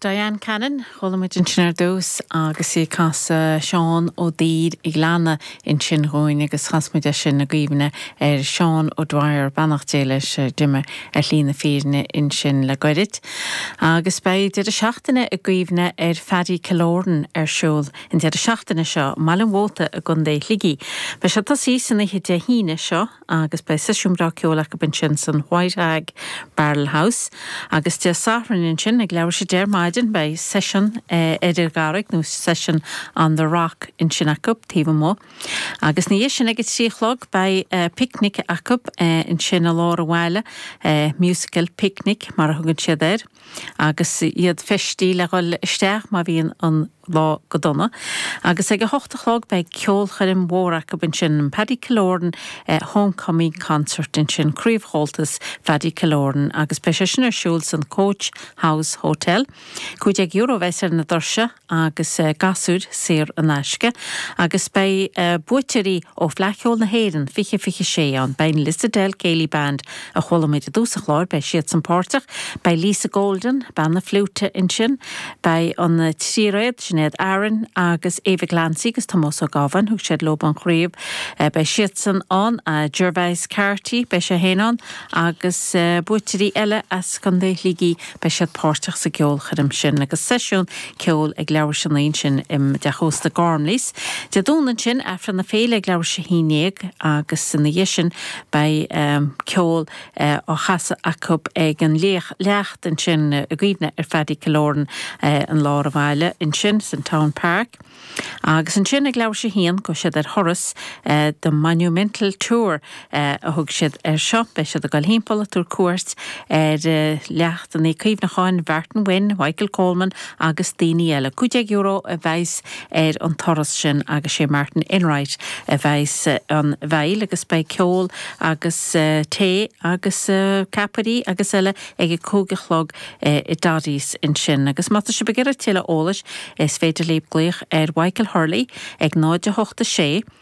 Diane Cannon, chuala muid ansin ar dtús agus í ag casadh Seán Ó Duibhir an Ghleanna ansin dhúinn agus chas muid é sin i gcuimhne ar Sheán O'Dwyer, beannacht Dé leis, a d'imigh ar shlí na fírinne ansin le goirid. Agus beidh deireadh seachtaine i gcuimhne ar Phaddy Killoran ar siúl an deireadh seachtaine seo i mBaile an Mhóta i gContae Shligigh. Beidh sé ag tosaí san oíche Dé hAoine seo, agus beidh seisiún breá ceoil acu ansin san White Hag Barrel House. Agus Dé Sathairn ansin, ag leathuair tar éis a deich ar maidin, beidh seisiún ar an gCarraig, nó Session on the Rock ansin acu, taobh amuigh. Agus 'na dhiaidh sin ag a trí a chlog, beidh picnic acu ansin i lár an bhaile, Musical Picnic mar a thugann siad air. Agus iad feistithe le dhul isteach má bhíonn an. lá go dona, agus ag a hocht a chlog beidh ceolchoirm mhór acu ansin, an Paddy Killoran Homecoming Concert ansin, Craobh Chomhaltas Phaddy Killoran, agus beidh sé sin ar siúl san Coach House Hotel. Cúig déag euro a bheas ar na doirse agus gasúir saor in aisce, agus beidh buaiteoirí ó Fhleadh Cheoil na hÉireann 2026 ann, beidh an Lissadell Céilí Band a chualamid i dtús an chláir, beidh siadsan páirteach, beidh Lisa Golden, bean na fliúite, ansin, beidh an tríréad, Sinéad, Aaron agus Eva Glancy agus Tomás Ó Gabháin, thug siad leo an chraobh, beidh siadsan ann, Gervais Carty, beidh sé féin ann agus buaiteoirí eile as Contae Shligigh, beidh siad páirteach sa gceolchoirm sin agus seisiún ceoil ag leathuair tar éis a naoi ansin i dTeach Ósta Gormleys. Dé Domhnaigh ansin, Aifreann na Féile ag leathuair tar éis a haon déag agus ina dhiaidh sin Beidh ceol á chasadh acu ag an leacht ansin i gcuimhne ar Phaddy Killoran i lár an bhaile ansin, san Town Park. Agus ansin ag leathuair tar éis a haon, gabhfaidh siad ar thuras, The Monumental Tour a thug siad air seo. Beidh siad ag dul thimpeall ag tabhairt cuairt ar leachtannaí cuimhneacháin Mhartin Wynne, Mhichael Coleman agus daoine eile. €15 a bheas ar an turas sin agus sé Martin Enright a bheas ina bhfeighil agus beidh ceol agus tae agus ceapairí agus eile ag a cúig a chlog i Doddy's ansin agus má tá sibh ag iarraidh tuilleadh eolais is féidir libh glaoch ar Mhichael Hurley ag 0 8 6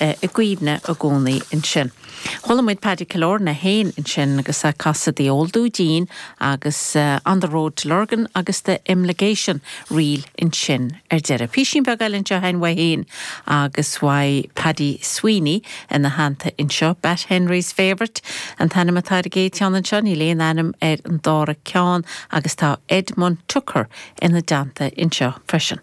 i gcuimhne i gcónaí ansin. Chuala muid Paddy Killoran féin ansin agus é ag casadh The Old Dudeen agus On the Road to Lurgan agus The Imligation Reel ansin ar deireadh. Písín beag eile anseo againn uaidh féin agus uaidh Paddy Sweeney ina theannta anseo. Batt Henry's Favourite an t-ainm atá ar an gcéad tiúin anseo, níl aon ainm ar an dara ceann agus tá Edmund Tucker ina dteannta anseo freisin.